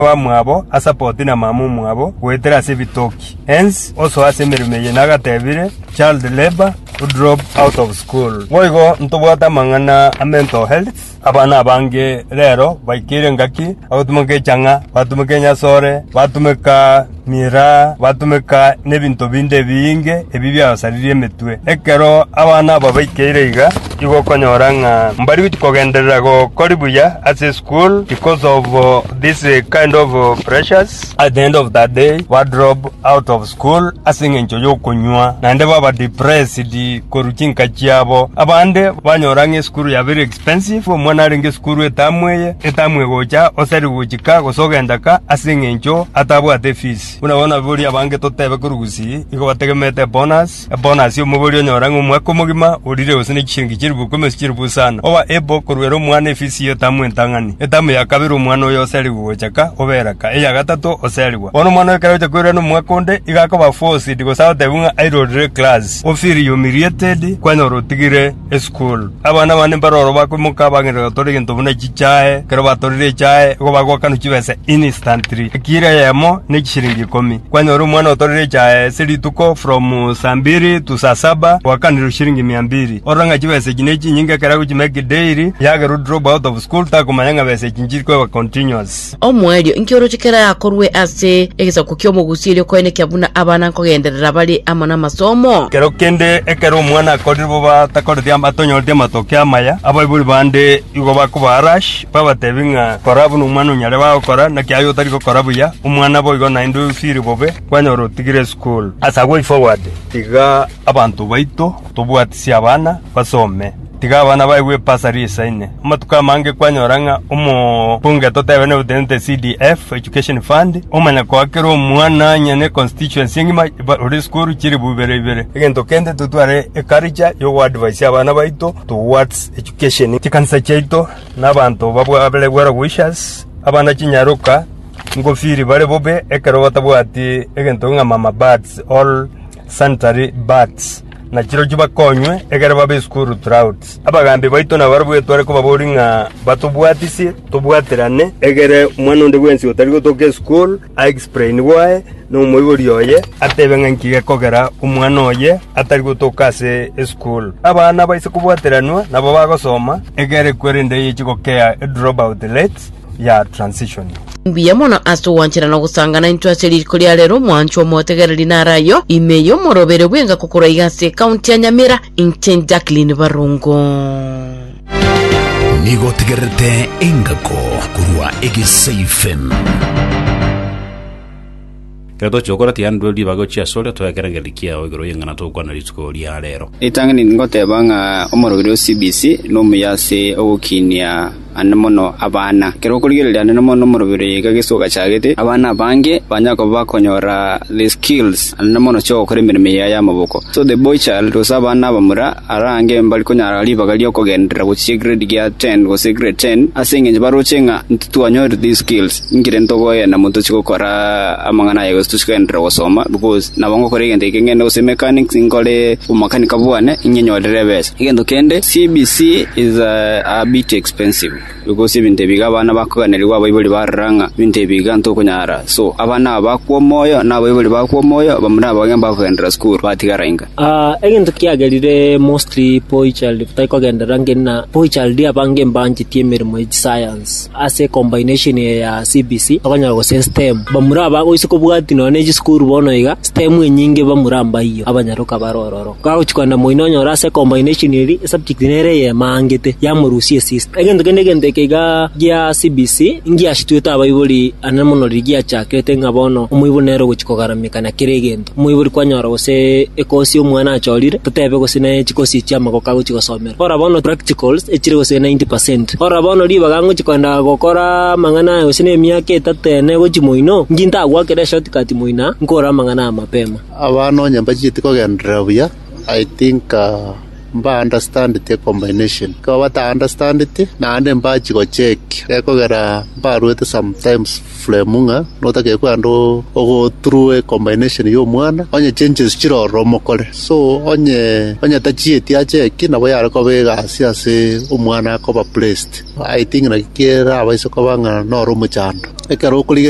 abamwabo asapoti na mama omwabo goetera ase ebitoki hence osoa ase emeremo eye nagatebire child labour u drop out of school boigo ntobwate amang'ana a mental health abana abange rero baikeire engaki bagotumeka echang'a batumeka enyasore batumeka Ngira batomeka nebinto binde ebiinge ebi biagosaririe emetwe. Ekero abana aba baikeire iga, igo okonyora ng'a mbari kogenderera gokori buya ase esukuru because of this kind of pressures, at the end of the day ba drop out of school ase eng'encho y'okonywa naende baba depressed korwa chinka chiabo. Abande banyora ng'a esukuru yabeire. Pensive omwana arenge sukuru etamu eye etamu egocha oseri gochika gose ogenda ka ase engencho atabwate efees. Buna bono ababori abange totebe korwa gusii igo bategemete ebonus, ebonus ya omobori onyora ng'a omwaka omogima orire gose ne chishiringi chilifu ikomi gose chilifu isano oba able koruera omwana efees ya etamu entang'ani. Etamu ya kabere omwana oyo oseri gocha ka obera ka, eya gatato oserigwa. Bono omwana oyo ekero agocha koirora nomwaka onde igo akoba forced gose agotebiwa ng'a airorere class. Ofeeled you humiliated, kwanyora otigire. esukuru. Abana bane mbaro oro bakoimoka bagenda gotora egento buna chichae. Ekero batorire echae, igo bagoakanwa chibesa instantly, ekiro eyemo ne chishiringi ikomi. Kwanyora omwana otorire echae ase rituko from saa mbiri to saa saba goakanirwe shiringi mia mbiri. Orora ng'a chibesa echi ne chinyinge ekero agochimake daily, yagera o drop out of school takomanya ng'a besa echi nchiri koegwa continuous. Omoerio, inki oroche kera akorwe ase egesaku ki'omogusi erio koenekia buna abana nkogenderera bare amo namasomo? Ekero kende ekero omwana akorire bobe atakoreti atonyoreti amatokia amaya, abaibori bande igo bakoba arash, babatebi ng'a kora buna omwana onyare bagokora, naki aye otari gokora buya, omwana boigo naende oisiri bobe, kwanyora otigire esukuru. Ase agwo way forward, tiga abanto baito tobwatisie abana basome. Tiga abana baye gw'epasa riisaine. Amatuko amange kwanyora ng'a omokungu etotebe nebutenete CDF, Education Fund, omanya koa kera omwana onye ne constituency engima ba- ore esukuru chilifu ibere ibere. Egento kende totware eculture y'ogoadvisia abana baito towards education. Chikanisa chiaito na abanto babwabere well wishers, abana chinyaroka, ngofiri bare bobe ekero batabwati egento ng'a mama birds or sanitary birds. na chirochio bakonywe, ekero babe isukuru Troads. Abagaambi baito nabarabwo etware kobaboria ng'a batobwatisie tobwaterane, ekero omwana onde bwensi otari gotoka esukuru aexplain gwaye nomoibori oye, atebe ng'a inki gekogera omwana oye atari gotoka ase esukuru. Abana baise kobwateranwa nabo bagosoma, ekero ekweri ende eyechia gokea, edropout rates, ya transition. Mbuya mono ase ogwanchera na ogosangana intwe ase riko ria rero mwanchwa omotegereri nare ayo ime y'omorobere bw'engako korwa iga ase ekaunti ya Nyamira inche Jacqueline Barongo. Nigo otegererete engako korwa egesaifem. Ekero tochia gokora tiyaanderwe ribaga ochie asore, toegere engencho kiao igoro y'eng'ana togokwana rituko ria reero. Ritang'ani ningoteba ng'a omorogiri o CBC nomuya ase ogokinia ande mono abana. Ekero okorigereria ande mono omorogiri oyo iga gese ogachagete, abana abange banyare koba bakonyora the skills ande mono chi'ogokora emeremo eye y'amaboko. So the boy child gose abana abamura arange mbari konyara ribaga ri'okogenderera gochia egrade gia ten gose egrade ten ase engencho baroche ng'a intitwanyore the skills. Ninki rende tokoegena na motochie gokora amang'ana aya gose tochie kogenderera gosoma? Gose nabo ngokora egento ekeng'ene gose emechanics nkore omomakanika bwane ng'a nyorere ebesa? Egento kende, CBC is a bit expensive because ebinto ebi iga abana bakoganerigwa abaibori barora ng'a ebinto ebi iga ntokonyara so abana aba bakwa omoyo na abaibori bakwa omoyo bamura nabo abang'ina mbakogenderera skuru batigara inga. Egento kiagerire mostly boy child tari kogenderera ng'ina boy child abange mbanchetie emeremo ye chiscience. ase combination eye ya CBC bakonyora gose STEM. Bamura aba goise kobwati nonya ne chisukuru bono iga, STEM enyinge bamura mbaiyo, abanyaroka bare ororo. Kagochi kogenda moino onyore ase combination eri esubject nere eyemo aangete, yamorusia esista. Egento kende egento eke iga gia CBC ngiasitwete abaibori ande mono riria giachakete ng'a bono omoibori nere ogochi kogarameka na kera egento. Omoibori kwanyora gose ekosi omwana achorire, totebe gose ne chikosi echi'amagoko agochi gosomera. Ora bono practicals echire gose 90 per cent. Ora bono ribaga ngochia koenda gokora amang'ana aya gose nemiaka etato ene gochia moino, inki ntagwakera eshort cut moina nkore amang'ana aya mapema? Abana onye mbacheti kogenderera buya, I think mba understandeti ecombination. Ekero bata understandeti, naende mbachia gocheck, gekogera mbaruete sometimes. Fremu ng'a notake kwande ogo through a combination ya omwana onye changes chire ororo omokore so onye onye tachieti acheki nabo yare koba egasi ase omwana koba placed I think naki kerabaise koba ng'a noro omochando ekero okorigereria